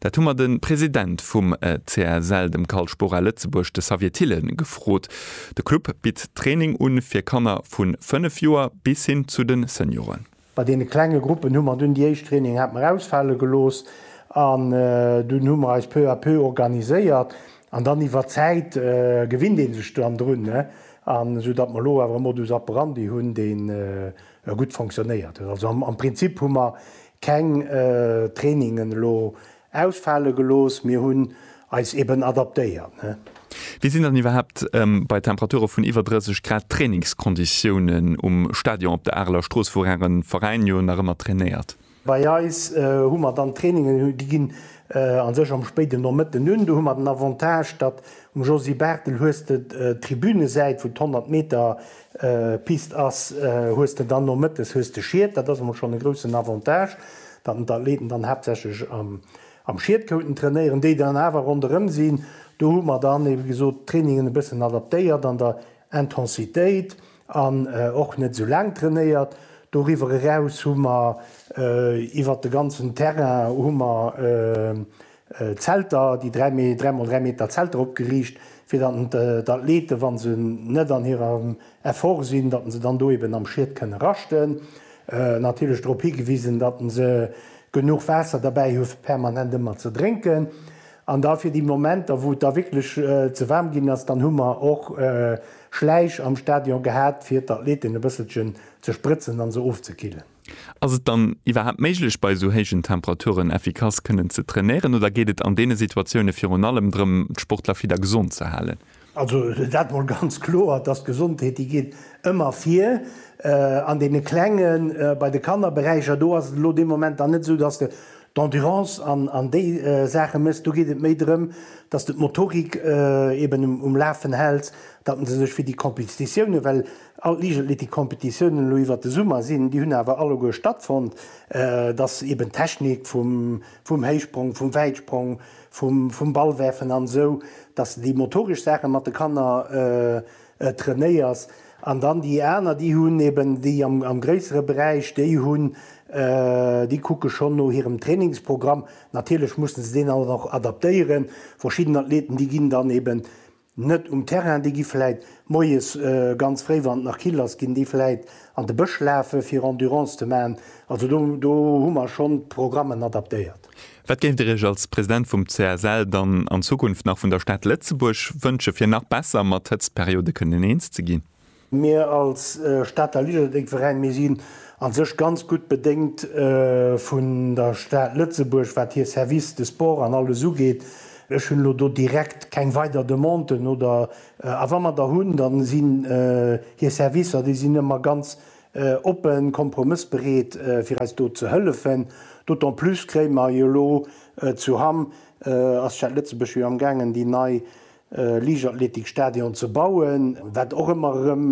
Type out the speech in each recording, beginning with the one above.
Dat hu mer de President vum CSL, dem Carl Spora Lëtzebuerg, de Xavier Thill, gefrot. De Club bitt Training un fir Kanner vu 5 Joer bis hin zu de Senioren. Bei deene klenge Gruppen hu mer dunn déi éischt Trainingen hat mer ausfale gelooss an dunn hu mer eis peu à peu organiséiert an dann iwwer d'Zäit gewinnt ee sech dann drun, esou datt mer elo awer e Modus operandi hunn, dee gutt fonctionnéiert huet. Also am Prinzip hu mer keng Trainingen elo ausfale gelooss, mir hunn eis eben adaptéiert. Wéi sinn dann iwwerhaapt bei Temperature vun iwwer 30 Grad d'Trainingskonditiounen um Stadion op der Areler Strooss, wou Äre Veräin jo nach ëmmer trainéiert? Bei eis hu mer dann Trainingen, déi ginn a sech am spéiden Nomëtten un. Do hu mer den Avantage, datt um Josy Barthel hues de d'Tribünesäit, wou d'Honnert Meter Pist ass, hues de dann nomëttes hues de Schied. Dat ass emol schonn e groussen Avantage, datt en d'Athleten dann haaptsächlech am Schied konnten trainéieren. Déi dann awer ronderëm sinn, do hu mer dann, wéi gesot, d'Trainingen e bëssen adaptéiert an der Intensitéit. An och net esou laang trainéiert. Doriwwer eraus hu mer iwwert de ganzen Terrain hu mer Zelter, déi 3 Mee-, 3 mol 3 Meter Zelter opgeriicht, fir datt d'Athleten, wa se net an hirem Effort sinn, datt se dann do eben am Schied kënne raschten. Natierlech drop higewisen, datt se genuch Waasser derbäi hu fir permanent ëmmer ze drénken. An da fir déi Momenter, wou et da wierklech ze waarm ginn ass, dann hu mer och Schläich am Stadion gehat, fir d'Athleten e bësselchen ze sprëtzen a se ofzekillen. Ass et dann iwwerhaapt méiglech, bei esou héijen Temperaturen effikass kënnen ze trainéieren, oder geet et an deene Situatioune virun allem drëm, d'Sportler fit a gesond ze halen? Also dat mol ganz kloer, dass d'Gesondheet déi geet ëmmer vir. An deene klenge bei de Kannerberäicher, do ass et elo dee Moment dann net esou, dass de d'Endurance an déi Saache mësst. Do geet et méi drëm, dass de d'Motorik eben um Lafen häls, datt se sech fir déi Competitiounen, well all d'Liichtathletikcompetitiounen elo iwwert de Summer sinn, déi hunn awer alleguer stattfonnt, dass eben d'Technik vum Héichsprong, vum Wäitsprong, vum Ball werfen an esou, dass de déi motoresch Saache mat de Kanner trainéiers an dann déi aner déi hunn eben déi am gréissere Beräich déi hunn, déi kucke schonn no hirem Trainingsprogramm. Natierlech mussen se deen dann och adaptéieren. Verschidden Athleten déi ginn dann eben Net um Terrain, déi gi vläit moies ganz fréi, wann et nach kill ass, ginn déi vläit an de Bësch lafe fir Endurance ze maachen. Also do do hu mer schonn d'Programmen adaptéiert. Wat géift Dir Iech als President vum CSL dann an Zukunft nach vun der Stad Lëtzebuerg wënsche fir nach besser mat Hëtztperiode kënnen eens ze ginn? Mir als Stater Liederdenveräin, mir sinn a sech ganz gutt bedéngt vun der Stad Lëtzebuerg, wat hir Services de sport an alles ugeet. Ech hunn elo do direkt keng weider Demanden oder, a wa mer der hunn, da sinn hir Servicer, déi sinn ëmmer ganz oppen, kompromëssbereet, fir eis do ze hëllefen. D'autant plus kréie mer jo elo zu Hamm, ass d'Stad Lëtzebuerg jo am gaangen, déi nei Liichtathletikstadion ze bauen, wat och ëmmer erëm,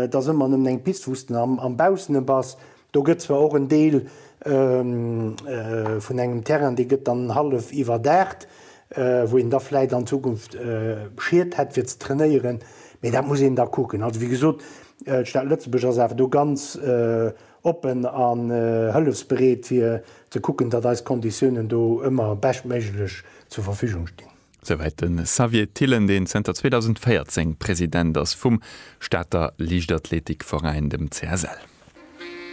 et ass ëmmer nëmmen eng Pist, wou s de am Baussene bass. Do gëtt zwar och en Deel vun engem Terrain, dee gëtt dann hallef iwwerdaacht, wou een da vläicht an Zukunft Schied hätt fir ze trainéieren, mee dat muss een da kucken. Also wéi gesot, d'Stad Lëtzebuerg ass awer do ganz oppen a hëllefsbereet fir ze kucken, datt eis Konditiounen do ëmmer beschtméiglech zur Verfügung stinn. Souwäit de Xavier Thillen, deen zënter 2014 President ass vum Stater Liichtathletikveräin, dem CSL.